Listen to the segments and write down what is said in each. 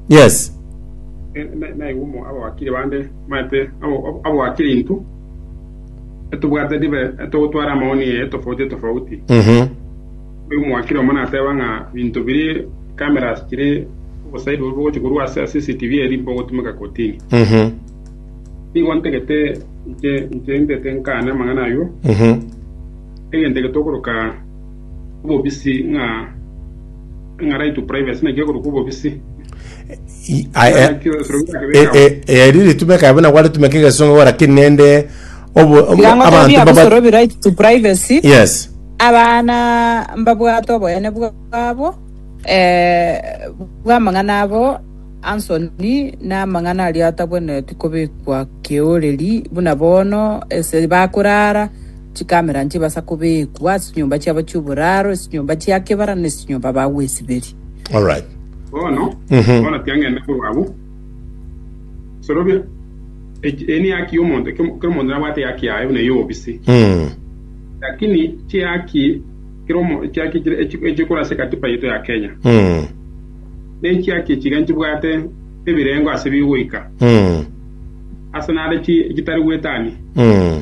yes naigwa abawakiri bande maete abawakiri intwe etobwate ribe etogotwara amaoni etofauti etofauti Mhm. oyo omwakiri omo nateba ng'a binto biri cameras chiri obosaidi bobe bogochi korwa ase ase CCTV eri bogotumeka kotini Mhm. nigo ntagete inche inche ntete nkane amang'ana ayio Mhm. egento ege tokoroka obobisi ng'a ng'a right to privacy naki ekorokwa obobisi. Ah, eh, Naki esiro birakebeka eh, eh, eh, eri ritumeka abana gwaritumeka egesongo gora kiri nende obo- obo- Tiga ngotebi abanto abusoro baba bi right to privacy. yes Abana mbabwate oboyene bwabo eh, bw'amang'ana abo ansoni n'amang'ana aria atabwenereti kobekwa keoreri buna bono ase bakorara Chikamera nchibasa kobeekwa ase chinyomba chiabo chi'oboraro, ase chinyomba chia kebara, na ase chinyomba bagwesiberia. Alright. Bono, bono tiang'eine korwa abwo, sorobia eki- eye nehaki y'omonto, kero kero omonto nabwate ehaki yaye buna ey'obobisi, Mm. lakini chihaki kero omo- chihaki chire- echi- echikora ase ekatiba yaito ya Kenya, Mm. nechihaki echi iga nchibwate ebirengo ase bigoika, Mm. ase nare chi- chitari gwetania. Mm.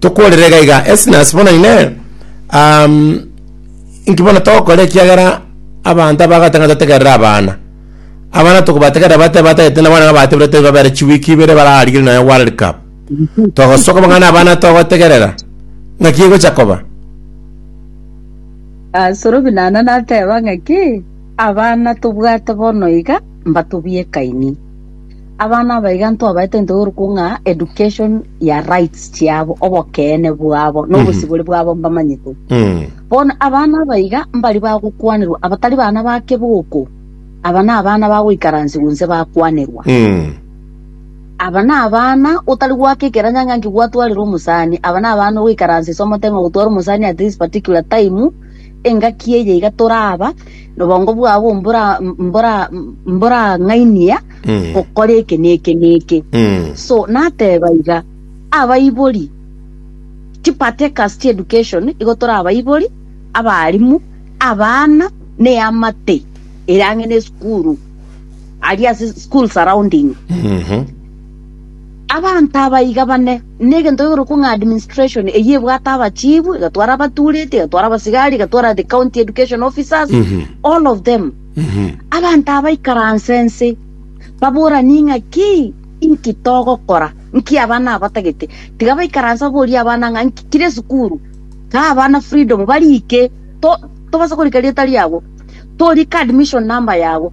Tokorere iga iga, Esnas bono ine um, inki bono togokora ekiagera abanto abagate ng'a totegerere abana. Abana tokobategerera bate batagete na bono ng'a bateberete babere chiwiki ibere bararigire nayo World Cup. Togosoka bang'ana abana togotegerera ng'aki egocha koba. Ah, Sorobi nana nateba ng'aki abana tobwate bono iga mbatobie kaini. Abana abaiga ntwabaete ntogoruku ng'a education ya rights chiabo obokeene bwabo na obosibore bwabo mbamanyete Mm. bono abana abaiga mbari bagokwanerwa abatari bana ba keboko aba na abana bagoikaransigwa nse bakwanerwa Mm. aba na abana otari gwaka ekeranya ng'a nki gwatwarire omosani aba na abana ogoikaransa ase omote ng'a ogotwara omosani at this particular time Engaki eye iga toraba nobongo bwabo mbora mbora mborang'ainia Mm. gokora eke na eke na eke Mm. so nateba iga abaibori chipartakers chi education igo tore abaibori abarimu abana ne amate ere ang'e ne esukuru aria ase school surrounding Mhm. Abanto abaiga bane, negento gekorokwa ng'a administration, eyio ebwate abachifu, egatwara abatureti, egatwara abasigari, egatwara the county education officers, all of them. Abanto aba baikaranse ense, baboranie ng'a ki inki togokora, nki abana aba batagete. Tiga baikaranse baborie abana ng'a nki kire esukuru, kaa abana freedom, barike, to- tobasa korika rieta riabo, torike admission number yabo,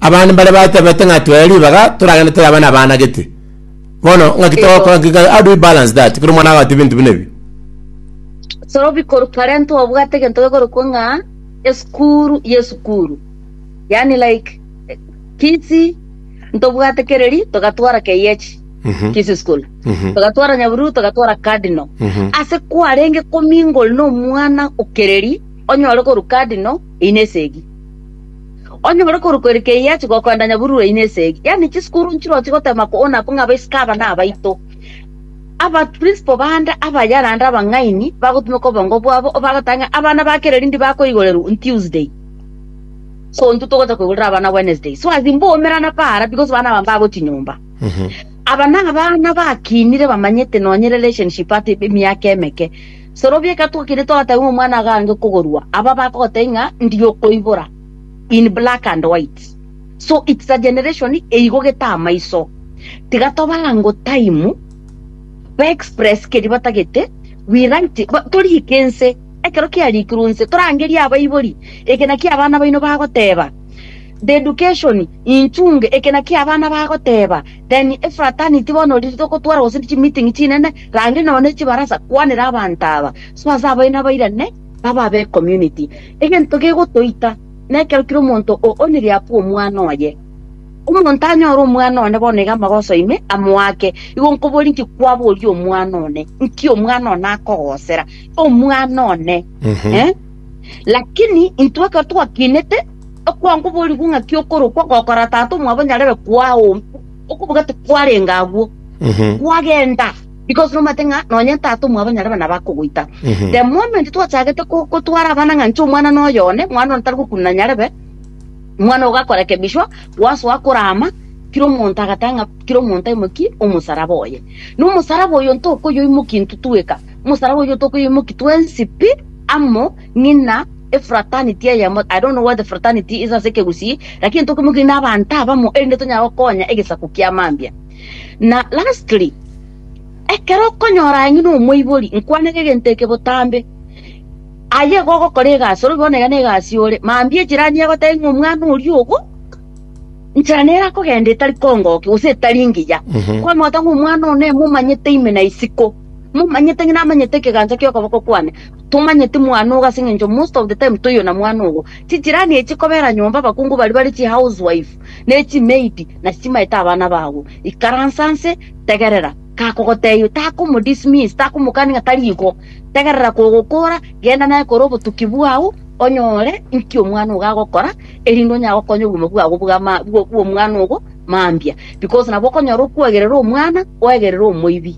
Abande mbaria batebete ng'a twee ribaga toragende toyaba na abana gete. Bono ng'aki togokora ng'aki how do we balance that kero omwana agote ebinto buna ebi? So bikorwa parent obwate egento gekorokwa ng'a esukuru y'esukuru. Yaani like eh, fees ntobwate kereri togatwara KH Mhm. Kisi School. Mhm. Togatwara Nyaburu togatwara Cardinal. Mhm. Ase kwarenge komingle na omwana okereri onyore korwa Cardinal ine esegi. Onye more korokwa ere keyie ache gokoenda nyaburi rwaino esegi, yaani chisukuru nchiroche gotema koona kong'a abaisiko aba nabaito. Abaprinciple bande abaya naende abang'aini bagotumeka obongo bwabo obagoteba ng'a abana ba kera erindi bakoigorerwa on Tuesday, so intwe togocha koigorera abana Wednesday. So as in mbwaumerana paara because abana aba mbagochia nyomba. Aba nabana bakinire bamanyete nonye relationship ata emiaka emeke. Sorobia egetwa keria twateba ng'a omwana agange kogorwa, aba bakogotebia ng'a ndiye okoibora, in black and white. So it's a generation eigogete amaiso. Tiga tobe ango time, ba express keria batagete, we write it, ba- toriike ense, ekero kiarikirwe nse, torangerie abaibori, eke naki abana baino bagoteba. The education, inchunge, eke naki abana bagoteba. Then Ephrata and itibo nori ritogotwara gose chi meeting chinene, range nonya ne chibarasa, kwanera abanto aba, so ase abwo nabairane babe abe community. Egento gegotoita nekero kera omonto o onire akwe omwana oye. Omonto anyore omwana one bono iga amagoso ime amoake, igo nkoborie inki kwaboria omwana one, inki omwana one akogosera? Omwana one. Eh? Lakini intwe ekero twakinete okwangu oborikwa ng'a ki'okorokwa gokora tata omwabo nyarebe kwao, okobuga tikwarenga agwo, kwagenda, because nomanyete ng'a nonye tata omwabo nyarebe nabo akogoita. The moment twachagete ko- kotwara abana ng'a inche omwana noyo one, mwana one tari gokunana nyarebe, mwana ogo akorekebishwa, gwasoa korama, kera omonto agateba ng'a kera omonto aimokie omosaraba oye. Na omosaraba oyo ntokoyoimokia intwe tweka. Omosalaba oyio tokoimokia twensi pi amo ng'ina efraternity eyemo. I don't know what the fraternity is ase ekegusii, lakini tokoimokia ng'ina abanto abamo erinde tonyare gokonya egesaku kia mambia. Na lastly, ekero okonyora aye ng'ina omoibori, nkwanere egento eke botambe. Aye igo ogokora egasi, orobi bono iga negasi ore. Mambia ejirani egotebia ng'a omwana oria ogo, nchera nere akogenda etari kongokia gose etari ngiya. Kwamanya gose ng'a omwana one momanyete ime na isiko. Momanyete ng'a namanyete ekegancha ki'okoboko kwane. Tomanyeti mwane ogo ase engencho most of the time toiyona mwane ogo. Chijirani echi kobera nyomba abakungu baria bare chihouse wife ne chimaid nasi chimaete abana babo. Ikaransa nse, tegerera. Kakogotebia takomodismiss, takomokani ng'a tari igo. Tegerera kogokora, genda naye kore obotuki bwao onyore inki omwana ogo agokora erinde onyare gokonya obogima bwabo bw'ama bw'omwana ogo mambia because nabo okonyora okwagerera omwana oegerera omoibi.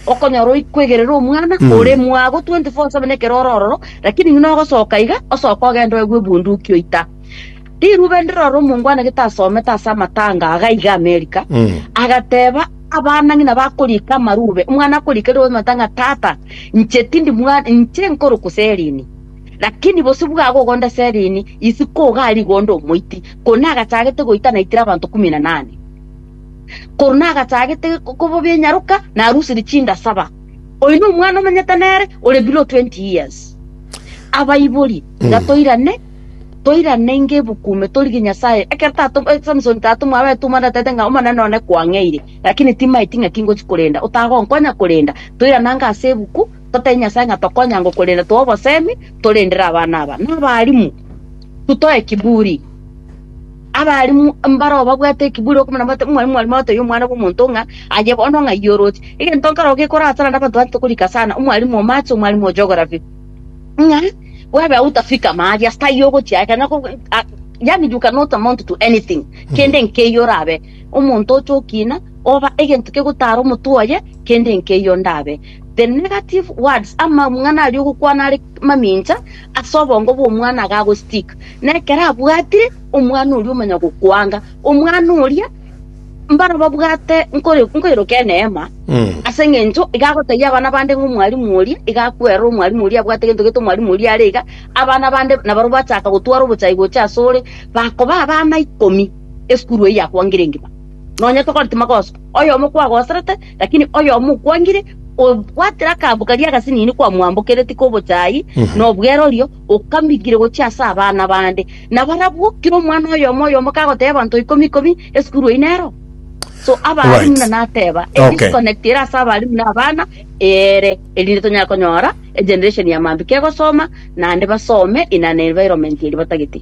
Okonyora oikwegerera omwana Mm. ore mwago 24/7 ekero ore ororo, lakini ng'ina ogosoka iga osoke ogende oegwe ebunduki oita. Rirube ndirore omongwana gete asomete ase amatanga aga iga America, Mm. agateba abana ng'ina bakorika amarube, omwana akorika rirobe omanyete ng'a tata inche tindi mwa- inche nkoruku Celine, lakini bosio bwago ogonde Celine, isiko iga aria igonde omoiti, korende nagachagete goita naitire abanto kumi na nane. korende agachagete kobobia enyaroka na arusirie chinda saba. Oyo nomwana omenyete nere ore below 20 years. Abaibori, tiga toirane, toirane ngebukume torige Nyasaye. Ekero tato eh, Samson tato mwabete omandatete ng'a omanene one kwang'eire, lakini timaeti ng'a tingochi korenda, otagonkonya korenda. Toiranange ase ebuku, totebi Nyasaye ng'a tokonya ngokorenda toa obosemi, torendere abana aba. Nabarimu, tutoe kiburi. Abarimu mbaroo babwate ekeburi okomanya bati, Omwami, Omwarimu atebia Omwana bw'Omonto ng'a, Aye bono ng'ai yi oroche? Egento nkaroo gekorasana na abanto bane tokorika sana, Omwarimu o Mache, Omwarimu o Geography, ng'a bwebe outa fika ama aria, ase taiyo ogochia aye, kanya ko- a- yaani you cannot amount to anything, kende nkeiyo orabe omonto oche okina, oba egento kegotara omotwe oye, kende nkeiyo ndabe. The negative words, amang'ana aria ogokwana are mamincha, ase obongo bw'omwana agagostick, na ekero abwatire omwana oria omanya gokwanga omwana oria, mbaro babwate nkore- nkoiroka eneema ase eng'encho iga agotebia abana bande ng'a omwalimu oria iga akwerora omwalimu oria abwate gento gete omwalimu oria are iga, abana bande nabaro bachaka gotwara obochai gocha ase ore, bakoba abana ikomi esukuru eyio yakwangire engima. Nonya tokoreti magoso, oyomo kwagoserete. Lakini oyomo okwangire, obwatire akaambo karia agasinini kwamwambokereti k'obochaayi na obwerorio, okambingire gochia ase abana bande. Na barabwo, kera omwana oyomo oyomo kagoteeba abanto ikomi ikomi, esukuru eye nero. So abaalimu Alright. buna nateeba, a Okay. disconnect ere ase abaalimu na abana ere, erinde tonyare konyora egeneration ya mambia kegosoma, naende basome in an environment eria batagete.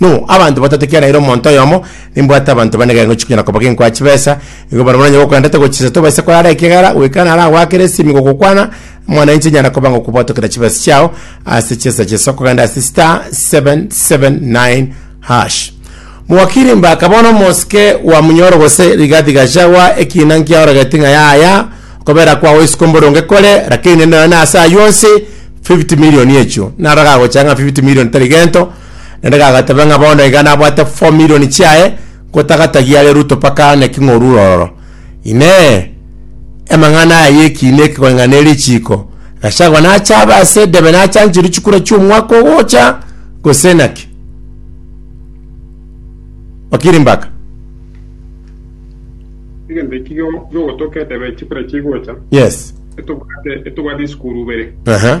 No, abanto batato ekiagera ere omonto oyomo, nimbwate abanto bane gari ngochia konyora koba genkoa chibesa, igo barabwo nonye gokwenderete gochisa tobaise korara ekiagera goika naro agoakere esimi gokokwana, mwana inche nyara koba ngokobwatokera chibesa chiao ase chinsa chinso kogenda ase star 779 hash. Mwakiri Mbaka bono omosike wa Munyoro gose Rigathi Gachagua ekiina nkiaorogeti ng'a yaya okobera kwao isiko mboronge kore lakini nonya ase ayio onsi 50 million echio naro gagocha ng'a 50 million tari gento Naende gagateba ng'a bono iga nabwate four million chiaye, ngotagatagia are Ruto mpaka aane king'orure ororo. Inee! Emang'ana aya y'ekiina eke koreng'ana ne richiiko? Gachagua nache abe ase edebe nachancherwe chikura chi'omwaka ogocha, gose naki? Wakiri Mbaka. Egento eki gio- giogotoka edebe chikura chigocha, Yes. etobwate etobwate isukuru ibere. Aha.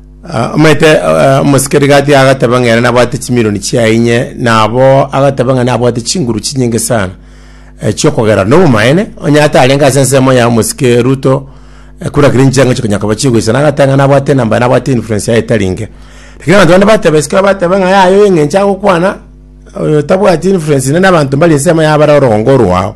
Ah, omanyete eh, omosikeri gati agateba ng'a ere nabwate chimilioni chiaye inye nabo agateba ng'a nabwate chinguru chinyinge sana eh, chiokogera nobomaene onye ata arenge ase ensemo ya omosike ruto eh, kura kiri nchianga gochia konya koba chigoisana agateba ng'a nabwate enamba nabwate influence yaye etari inge lakini abanto bande bateba esikero bateba ng'a yaye oyo eng'encho agokwana oyo tabwati influence nene abanto mbari ensemo yabare orogongo orwao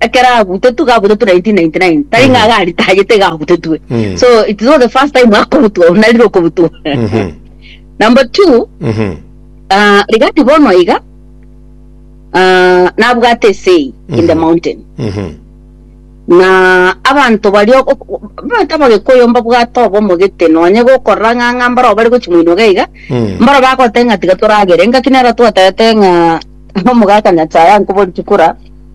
Ekero agutetwe gagutetwe 1999 tari ng'a iga aritagete iga agutetwe Mm. so it is not the first time akorutwa ona rire okorutwa Mhm. number two Mhm. ah, rigati bono iga ah, nabwate esei in the Mhm. mountain Mhm. na abanto baria ok- ok- abanto abagekoyo mbabwate obomogete nonye gokorora ng'ang'a mbaro bari gochimoinoga iga Mm. mbaro bagotenga tiga toragere ngaki nero twatete ng'a omogaka nyasaye ankobori chikura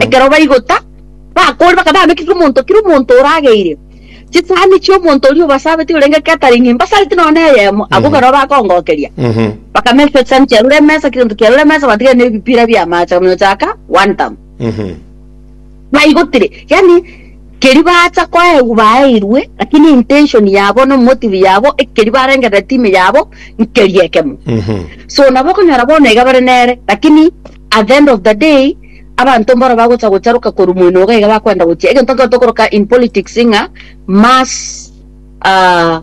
Ekero baigota, bakore, bakaba bamekigwe omonto kera omonto orageire chisahani chi'omonto oria obasabetie orenge catering, mbasareti nonya neyemo, abwo barabwo bakongokeria. Bakamechwa chisahani chia rure emesa, kera egento kia rure emesa, batiga nebipira bi'amache bakamiochaka wantam. Baigotire, yaani keria bacha koegwa baeirwe, lakini intention yabo na motive yabo, ekeria barengerere time yabo, nkeria ekemo. So nabo okonyora bono iga bare nere, lakini At the end of the day, abanto mboro bagocha gocharoka korwa mwenoga iga bakoenda gochia. Egento nkero tokoroka in politics ng'a mass ah,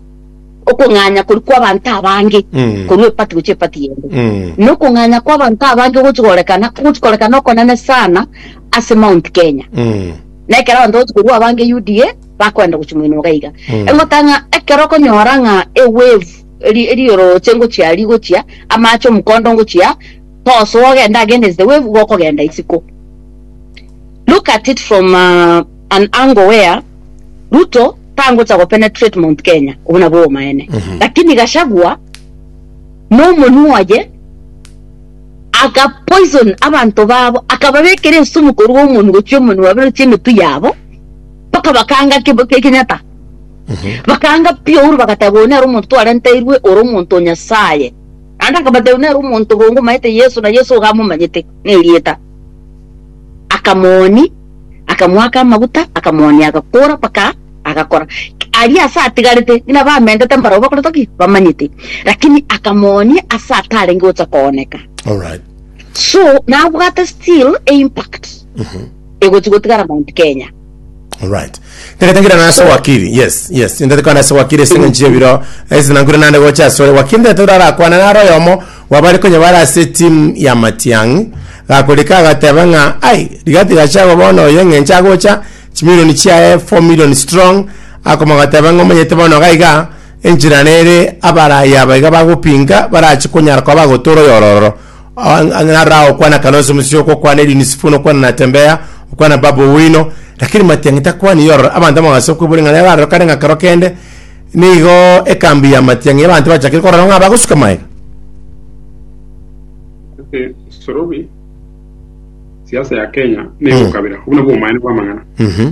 okong'anya koria kw'abanto abange Mm. korwa epati gochia epati yende Mm. na okong'anya kw'abanto abange ogochi gorekana ogochi korekana okonene sana ase Mount Kenya Mm. na ekero abanto bagochi korwa abange UDA bakoenda gochia mwenoga iga Mm. engotanga ng'a ekero okonyora ng'a ewave eri- erioroche ngochia rigochia amache omokondo ngochia Tosa ogenda against the wave igo okogenda isiko. Look at it from uh, an angle where Ruto tangocha go penetrate Mount Kenya obo nabwo obomaene lakini Gachagua nomonwa oye aka poison abanto babo akababekera esumu korwa omonwa gochia omonwa bero chia emetu yabo mpaka bakanga kibo- ki- kinyata bakanga pure bagateba oyo nere omonto twarenteirwe ore omonto o Nyasaye Naende akabatebia, Nere omonto obo ngomaete Yeso, na Yeso iga amomanyete nerieta. Akamoonia, akamoaka amaguta, akamoonia agakoora mpaka agakora. Aria ase atigarete ng'ina bamentete mbarabwo bakoretwa ki? Bamanyete. Lakini akamoonia ase atarenge gocha kooneka. All right. So nabwate still e impact egochi gotigara Mount Kenya. Alright. Tegetengira na ase wakili. Yes, yes. Ndete kwana ase wakili ase ngenchi ebiro. Ese nankure nande gocha ase ore. Wakili ndete urara kwana na royo mo. Wabari konye bara ase team ya Matiang. Gakorika agateba nga ai rigati gacha go bono oyo ngenchi agocha. Chimilioni chiaye 4 million strong. Akoma gateba ngo monyete bono gaiga. Enchira nere abara yaba iga bagopinga. Barachi konyara kwa bagotora oyo ororo. ng'ara okwana kanosi musio okokwana edini sifuna okwana natembea okwana baba owino lakini matiang'i takwana yorora abanto amagase okwebori ng'a rero kare ng'a kero kende nigo ekambi ya matiang'i abanto bachakire korora ng'a bagosuka maega ase sorobi siasa ya kenya na egokabera obuna bwa omaene bwa amang'ana Mhm.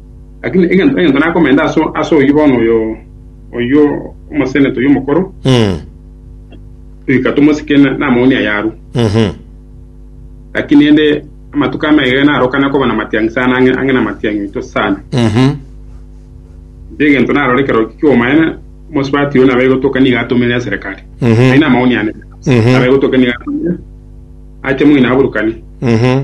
Lakini egento egento nakomenta ase ase oyio bono oyo oyio omoseneta oyio omokoro, Mm. toika tomosike na- namaunia ayarwa. Mhm. Lakini ende amatuko amaiga narokana koba namatiangi sana ang'e ang'e namatiangi oito sana. Mhm. Nche egento narore ekero ki'omaene omosubati oyio nabe gotoka niga atomere eserekari. Mhm. Aye namauni ane. Mhm. Nabe gotoka niga atomere ache moino aburukane. Mhm.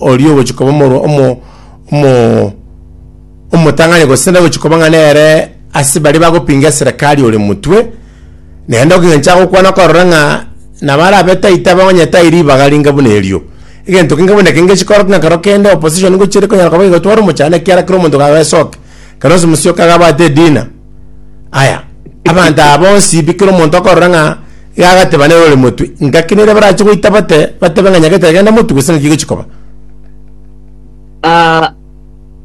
oria ogochia koba omorwa omo- omo- omotang'ani gose nagochia koba ng'a nere ase baria bagopinga eserekari ore motwe, naende egento agokwana okorora ng'a nabo arabe taita abe onye tai ribaga ringa buna erio. Egento keinge buna eke ngechia korokigwa ng'a ekero kende opposition ngochia ere konyara koba egotwara omochando ekiagera kera omonto kabe asoke, ekero ase omosia okabe abwate edina. Aya, abanto aba bonsi bi kera omonto akorora ng'a iga agateba nere ore motwe, ngaki nere barache goita bate, batebe ng'a nyagete agende motwe gose ng'aki gochi koba. Ah,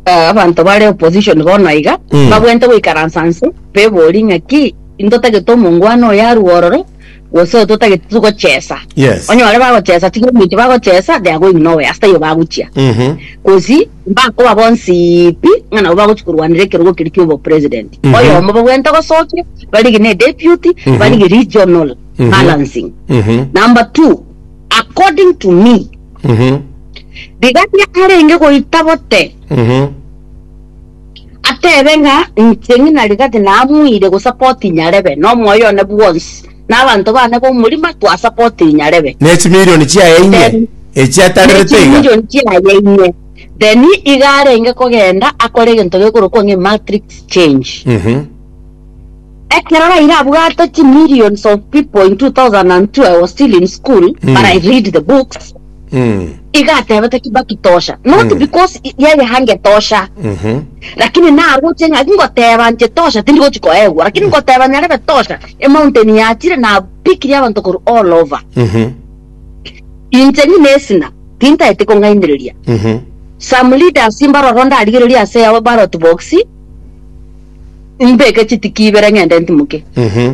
ah, abanto bare opposition bono aiga Mm. babwenerete goikaransa nse, beborie ng'aki intotagete omongwana oyo arue ororo, gose oto otagete togochesa Yes. onye bare bagochesa tiga ominto bagochesa they are going nowhere ase taiyo bagochia Mhm. gosi mbakoba bonsi pi ng'a nabo bagochi korwanera ekerogo keria kia obopresident Mhm. oyomo bagwente gosokia barigie ne deputy Mhm. barigie regional Mhm. balancing Mhm. number two according to me Mhm. rigaria arenge goita bote Mhm. Atebe ng'a, Inche ng'ina rigati namuire gosapoti Nyarebe na omoyo one bwonsi, na abanto bane b'omorima twasapoti Nyarebe. Ne chimilioni chiaye inye Then- echi Ne atarerete iga. chimilioni chiaye inye. Then iga arenge kogenda akore egento gekorokwa ng'a matrix change. Mhm. Ekero Raila abwate chimillions of people in 2002 I was still in school, but I read the books. Mm. Iga atebete Kibakitosha, not Mm. because i- yeye hangetosha, Mhm. lakini naroche ng'a ngoteba nche tosha tindi gochi koegwa, lakini ngoteba nyarebe tosha, emountain yachire napikirie abanto korwa all over. Mhm. Inche ng'ina esina, tintaete kong'ainereria. Mhm. Some leaders mbaroro ndarigereria ase yabo ballot box, mbeke chitiki ibere ng'ende ntimoke. Mhm.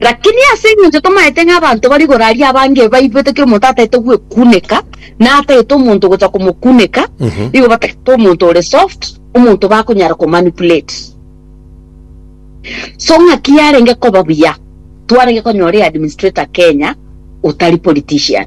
Lakini ase engencho tomaete ng'a abanto bari igoro aria abange baigwete ki omonto ataete gwekuneka, na ataete omonto gocha komokuneka, nigo batagete omonto ore soft, omonto bakonyara komanipulate. So ng'aki yarenge koba buya, twarenge konyora eadministrator Kenya otari politician.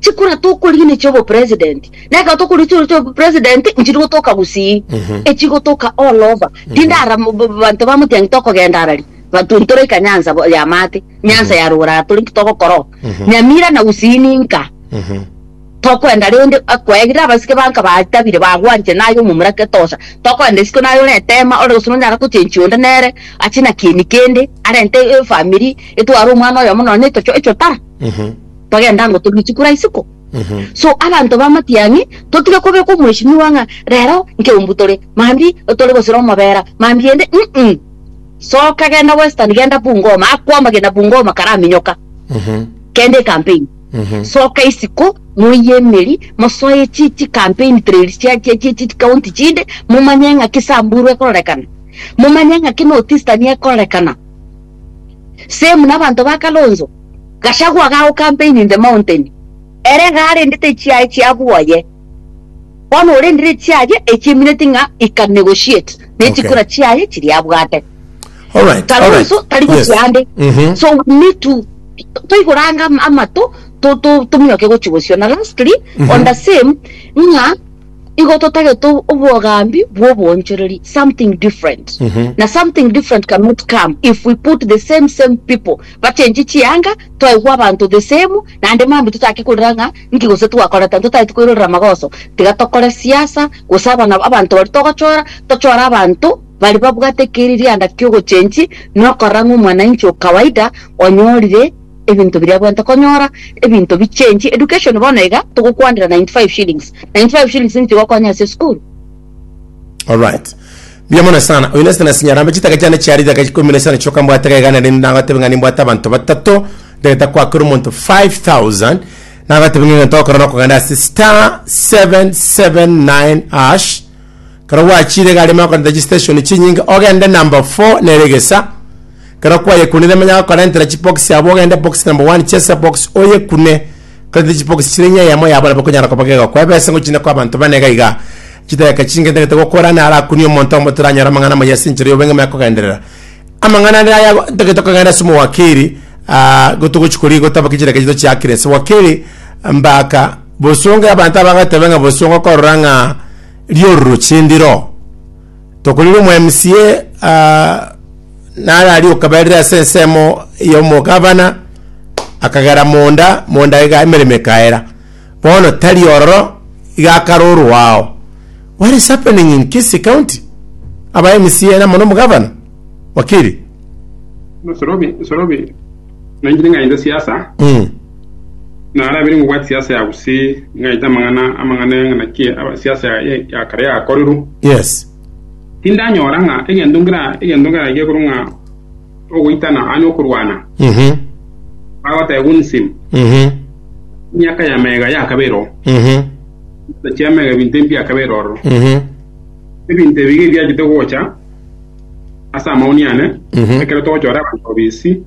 chikura tokorigia ne chiobo president na ekero tokorigia chikura chiobo president nchiri gotoka gusii echi gotoka all over tinde ara mo- bo- banto ba motiangi tokogenda arari banto ntoraika nyansa bo- ya maate nyansa ya rogoro ara tore nki togokora oo nyamira na gusii ninka tokwenda rende akwegire abasike banka batabire bagwanchire naye omomura ketosha tokwenda isiko naye ore etema ore gose nonyara gochenchia onde nere ache na kieni kende arente efamiri etware omwana oyomo nonye etocho echotara togenda ngo turu isiko ra isiko. So abanto b'amatiang'i totige kobeka omweshimiwa ng'a rero nkeumbu tore mambi tore gose romobera mambi ende mm soka genda western genda Bungoma akwama genda Bungoma karaminyoka kende campaign soka isiko moiye emeri mosoe chi chi campaign trails chia chia chia chi county chinde momanye ng'a ki Samburu ekororekana momanye ng'a ki North Eastern ekororekana same nabanto ba Kalonzo, Gachagua gago campaign in the mountain, ere iga arendete echiaye chia bwoye, bono orendire echiaye echiemineti ng'a he can negotiate ne Okay. chikura chiaye chiria abwate. All right, all right. Kalonzo tari Yes. gochia ande. Mhm. So we need to to- toigoranga am- amato to- to- tominyoke gochia gosiona lastly Mhm. on the same ng'a igo totagete ob- obwogambi bw'obonchoreri something different Mhm. na something different cannot come if we put the same same people bachenchi chianga twaigwa abanto the same naende mambi totake korera ng'a nki gose twakorete anto totagete koirorera amagoso tiga tokore siasa gose abana abanto baria togochora tochore abanto baria babwate keriria anda ki'ogochenchi nokorora ng'a omwanainchi o kawaida onyorire Ebinto biria bwento konyora ebinto bi change education bono iga togokwanera 95 shillings 95 shillings nigo chigokonya ase esukuru. Alright. Mbuya mono sana. Oyo nesete nasinya arambe chitaka chiane chiare riaka ikomi nesano chioka mbwate iga iga naende nagotebe ng'a nimbwate abanto batato ndagete kwakera omonto 5000 nagotebe ng'a egento ogokora nokogenda ase star 779 hash Ekero gwachiire egari emaya korenta chisiteshoni chinyinge ogende number four nere egesa. Ekero kwayekunire manya gokorentera chibokisi abwo ogende bokisi number one chesa ebokisi oyekune korenta chibokisi chire ng'a eyemo yabo nabo ekonyara koba gegokoa ebesa ngochinde koa abanto bane iga iga. Chidageka chinge ntagete gokora naro akunie omonto oyomo toranyare amang'ana amaya ase enchera eyobenge maya kogenderera. Amang'ana ande aya igo ntagete kogenda ase omowakiri igo togochi korigia gotaba chidageka echi tochiakire ase wakiri mbaka Bosongo y'abanto abagateba ng'a bosongo korora ng'a riororo chindiro. Tokorire omo MCA ah, nare aria okaberire ase ensemo y'omogabana akagera monda monda iga emeremo ekaera. Bono tari ororo iga akarorwa ao. What is happening in Kisii County? Aba MCA na mono omogabana. Wakiri. Sorobi, Sorobi. Nainche ningaite siasa, narabire ngobwate siasa ya gose ningaite amang'ana amang'ana ng'a naki aba- siasa ya- ya- ya kare yakorerwa. Yes. Tindanyora ng'a egento nkera egento nkeragie korwa ng'a ogoitana anye okorwana Mhm. bagoteba gunism Mhm. miaka ya mega yakabera oo Mhm. chia mega ebinto ebi biakabera ororo Mhm. ebinto ebi biachete gocha ase amauni ane, Mhm. ekero togochora abanto bobisi,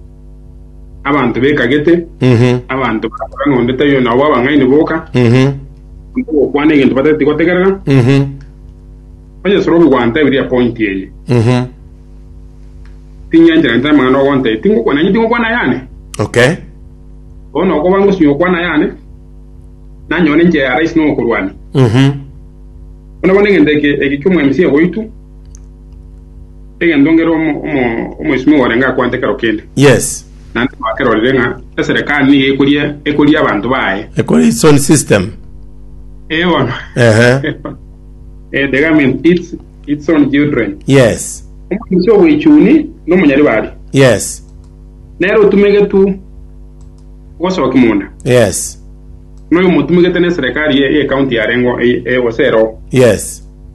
abanto bekagete, Mhm. abanto barakora ng'a onde taiyo nao b'abang'aini boka, Mhm. onde gokwana egento batageti gotegerera, Mhm. onye Sorobi gwantebirie epointi eye, Mhm. ting'encherente amang'ana ogontebia, tingokwana nanyiti ngokwana ayane, Okay. bono okoba ngosinywa gokwana ayane, nanyore inche ya rahisi nokorwania. Mhm. Bono bono egento eke eke ki'omoemisia oito, Egento ngere omo- omo- omoisimi orenge akwante kero kende, Yes. naende twakerorire ng'a eserekari nigo ekoria ekoria abanto baye. Ekore its own system. Eh, bono. Ehe. Eh, the government eats its own children. Yes. Omoisimi obwechuni nomonyaribari. Yes. Nere otumegetu gosoki munda. Yes. Noyo motumegete neserekari ye ye county yarengo eye- eye gose ero. Yes.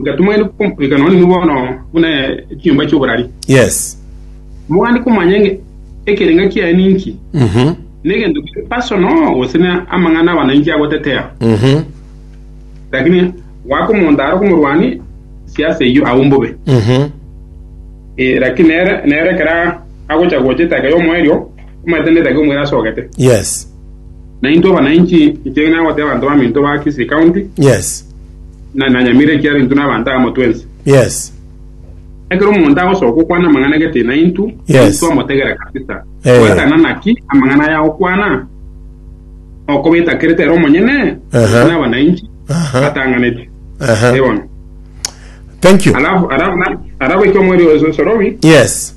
Ngatimoire komorika nonye nigo bono buna ekenyomba ki'oborari. Yes. Mogani komanya ng'a ekerenga kiaye ninki, Mhm. negento kiri personal gose na amang'ana aba nainki agotetea. Mhm. Lakini goaka omonto are komorwani siasa eyio agwo mbobe. Mhm. Eh, lakini nere nere ekero agocha gocha etaka y'omoerio, omaete netaka omwere asogete. Yes. Na intwe abana inchi, inche nagote abanto baminto ba Kisii County, Yes. na nanyamire ekiara intwe nabanto agamo twensi. Yes. Ekero omonto agosoka okwana amang'ana gete naintwe, Yes. intwe amotegere kabisa. Eh. Gwatana naki amang'ana aya agokwana, okobeta kerete ere omonyene, Aha. inche nabana inchi, Aha. atanganeti. Aha. Ebono. Thank you. Alafu, alafu, na- alafu ekio mweri oso sorobi, Yes.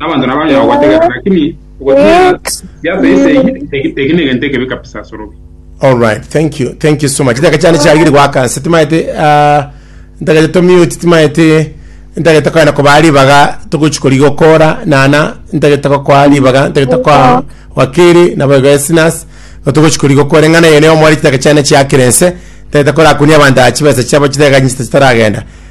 Nabanto nabanyare Ex. gogotegera, lakini ogotinyerera Ex. giato ense eyio, eki eki negento ekebe kabisa ase orobio. Alright, thank you, thank you so much. Chitaka chiane chiagire goaka nse timaete ah, ntagete to mute timaete ntagete koenda kobaa ribaga togochi kori gokora nana ntagete gokoa ribaga ntagete koa wakeri nabo igo esinas togochi kori gokora eng'ana eye nigo omore chitaka chiane chiakire nse ntagete korakunia abanto aa chibesa chiabo chideganyisa chitaragenda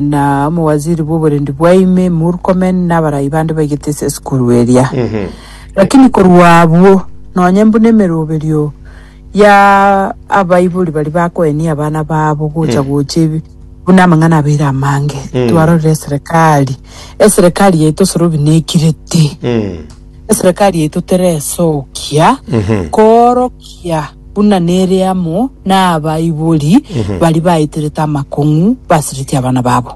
na omowaziri bw'oborendi bwa ime Murkomen na abarai bande baigete ase esukuru eria. Lakini korwa abwo, nonye buna emeroberio ya abaibori baria bakoenia abana babo gocha gocha ebi- buna amang'ana abeire amange, twarorire eserekari, eserekari yaito Sorobi nekirete. Eserekari yaito teresokia koorokia buna nere amo n'abaibori baria baeterete amakong'u basiretie abana babo.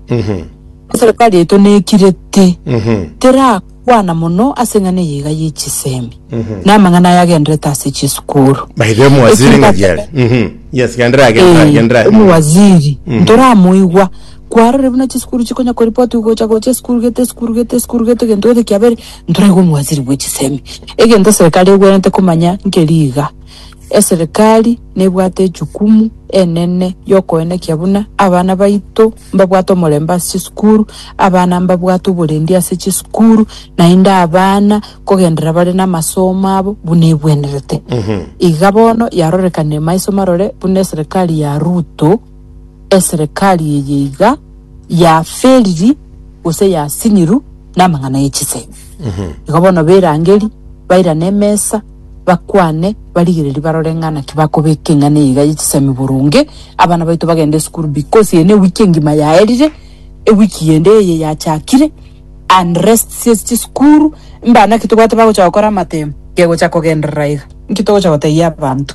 Eserekari yaito nekirete terakwana mono ase eng'ana eye iga ye chisemi na amang'ana aya agenderete ase chisukuru. By the way, omwaziri ng'a giare. Mhm. Yes, genderera, genderera, genderera. Omu waziri ntoramoigwa kwarorire buna chisukuru chikonya koripoti gocha gocha esukuru gete esukuru gete esukuru gete egento gete kiabere ntoraigwe omwaziri bwe chisemi. Egento eserekari egwenerete komanya nkeri iga, eserekari nebwate echukumu enene yokoenekia buna abana baito mbabwate omorembe ase chisukuru, abana mbabwate oborendi ase chisukuru, naende abana kogenderera bare namasomo abo buna egwenerete. Iga bono yarorekanire maiso marore buna eserekari ya Ruto. eserekari eye iga yaferiri gose yasiniru namang'ana ye chisemi. Igo bono berangeri, bairane emesa, bakwane, barigererie barore ng'a naki bakobeka eng'ana eye iga ye chisemi boronge, abana baito bagende esukuru because eye newiki engima yaerire, ewiki yende eye yachakire, unrest ase chisukuru, mbana naki tobwate bagocha gokora amatemba, kegocha kogenderera iga. Nki togocha gotebia abanto?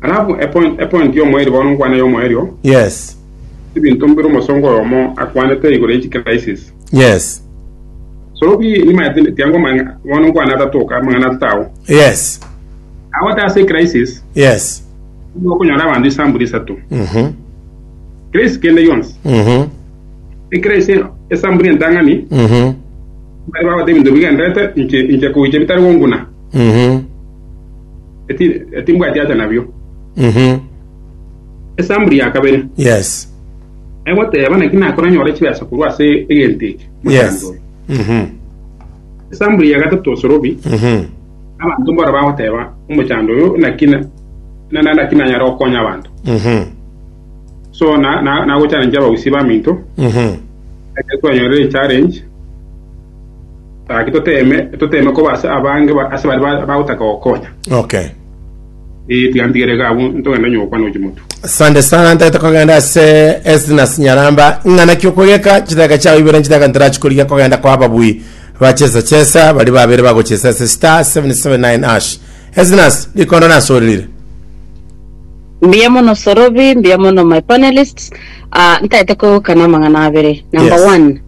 Alafu epoint epoint y'omoeri bono nkwane y'omoeri oo. Yes. Ebinto mbire omosongo oyomo akwanete igoro y'echi crisis. Yes. So bi nimaete tiango mang'a bono nkwane atatoka amang'ana atata ao. Yes. Agote ase crisis Yes. okonyora abanto isambuli isato. Mhm. Crisis kende yonsi. Mhm. Ecrisis esambuli entang'ani Mhm. bari bagote ebinto bigenderete inche inche koiche bitari gonguna. Mhm. Eti- etimbwati acha nabio Mhm. esambuli ya kabere Yes. egoteba naki nakoranyore chibesa korwa ase egento eke Yes. mochando oyo Mhm. esambuli ya gatato osorobi Mhm. abantu mbora bagoteba omochando oyo naki na- na- na- naki nanyara gokonya abanto Mhm. so na- na- nagochallenge abagusi baminto Mhm. ekero twanyorire challenge Gaki toteeme, toteeme koba ase abange ase baria bagotaka gokonya. Okay. Ee, tiga ntigere iga abwo, ntogende onye gokwana ochi motu. Asante sana ntagete kogenda ase Esnas Nyaramba ng'ana ki okogeka chidaka chao ibere nchidaka ntarachikorigia kogenda kwa ababui bachesa chesa bari babere bagochesa ase star 779 ash Esnas rikondo nasorire Mbuya mono Sorobi, mbuya mono my panelists. Ah, ntaete koegokana amang'ana abere. Number Yes. one,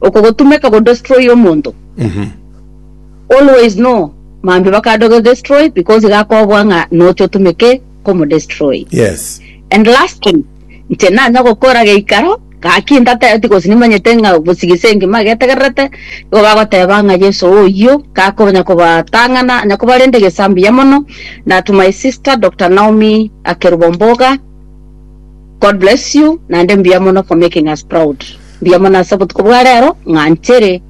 Oko gotumeka go destroy omonto. Always know mambia bakande ogo destroy because iga akobua ng'a noche otumeke komo destroy. Yes. And last thing, inche nanya gokora geikaro, gaki ndatebeti gose nimanyete ng'a gose gese engima egetegererete, igo bagoteba ng'a Yeso oyio gakonya kobatang'ana, onye kobarende gesa mbuya mono, na to my sister Doctor Naomi Akerubo Mboga, God bless you, naende mbuya mono for making us proud. Mbiamo nase obotuko bwa rero, ng'a nchire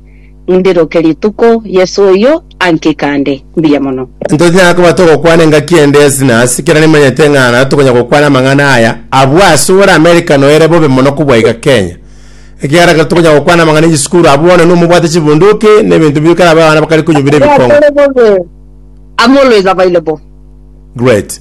ndiroke rituko Yeso oyio ankie kande. Mbuya mono. Ntonyara koba togokwana engaki ende ase na ase, ekero nimanyete ng'a naro tokonya gokwana amang'ana aya abwo ase ore Amerika noere bobe mono kobua iga Kenya. Ekiagera ekero tokonya gokwana amang'ana y'echisukuru abwo bono nigo mobwate chibunduki na ebinto bire kare abwo abana bakare konyubera Ekiagera ebikongo. tore bobe amo oloisabaire bo. Great.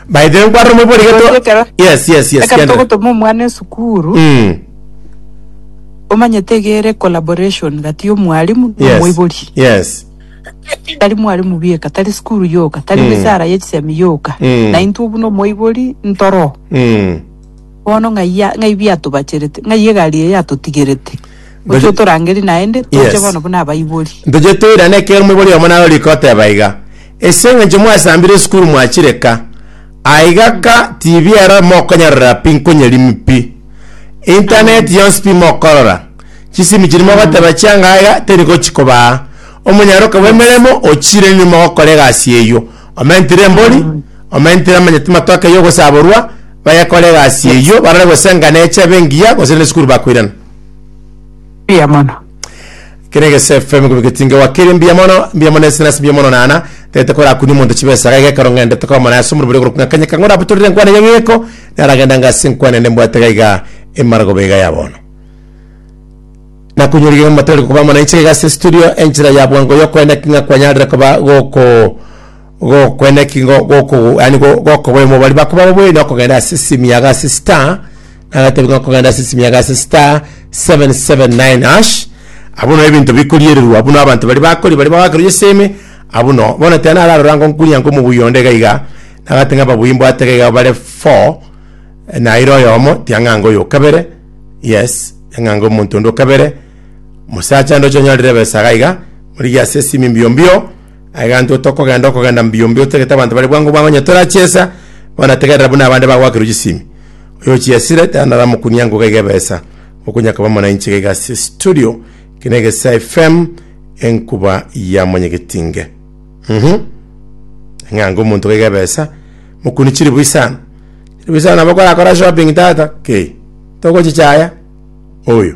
By the way, nkwarora omobua rigeto. Oyoria ekero- Yes, yes, yes. Ekero kiendelea. togotoma omwana esukuru, Mm. omanyete egere collaboration gati y'omwalimu na Yes. omoibori. Yes. Tari mwalimu bieka, tari sukuru yoka, tari Mm. misara y'echisemi yoka. Mm. Na intwe buna omoibori ntoro. Mm. Bono ng'aiya- ng'ai biatobacherete, ng'ai egari eye yatotigerete. Gocha Gocha- otorangerie naende, toche Yes. bono buna abaibori. Ntoche toirane ekero omobori omo narorikoteba iga. Ase engencho mwasambire esukuru mwachire ka, aiga ka TV ero mokonyarorera pi nkonyerimi pi. Internet yonsi pi mokorora. Chisimi chiri mogoteba chianga aiga teri gochikobaa. Omonyaroka bw'emeremo ochire inwe mogokora egasi eyio. Omentire embori, omentire amanya timatoke eyio ogosaborwa, bagekora egasi eyio barore gose enga neche ebe engiya gose nesukuru bakoirana. Mbuya mono. kere egese fm korwa getinge wa keri mbuya mono mbuya mono ase nase mbuya mono nana tete kora kuni monto chibesa ga gekero ngende tokora mana ase omorobori korwa kung'a kanya kang'ora abutorire nkwana ya ng'eko naragenda ngase nkwana ende mbwate gaiga emarago bega ya bono nakunyori gega matari koba mana ichega ase studio enchera ya bwango yokwenda king'a kwanyarire koba goko Gokwena ki ngo- goko- yani go- gokoboe mobari bakoba baboe na okogenda ase esimi yago ase star nagatebi ng'a okogenda ase esimi yago ase star 779 hash abwo no ebinto bikoriererwa abwo no abanto baria bakori baria bagakerwa eseme abwo no bono tena naro ararora ngo nkunya nko omobuya onde iga iga nagoteba ng'a ababuya mbwate iga iga bare four naira oyomo tiang'anga oyo okabere yes tiang'anga omonto onde okabere mosacha ndoche onyorire ebesa iga iga origie ase esimi mbio mbio. Egento tokogenda okogenda mbio mbio totagete abanto bare bwango bwango onye torachiesa bono tegerera buna abande bagwakirwe chisimi oyo ochiesire tanaramokunia ngoga iga ebesa okonya koba mwananchi iga iga ase studio eke na egesaa fm enkuba ya monyegetinge mhm ng'anga omonto iga iga ebesa mokuni chiribui sana chiribui sana nabo korakora shopping tata kei togochichaya oyo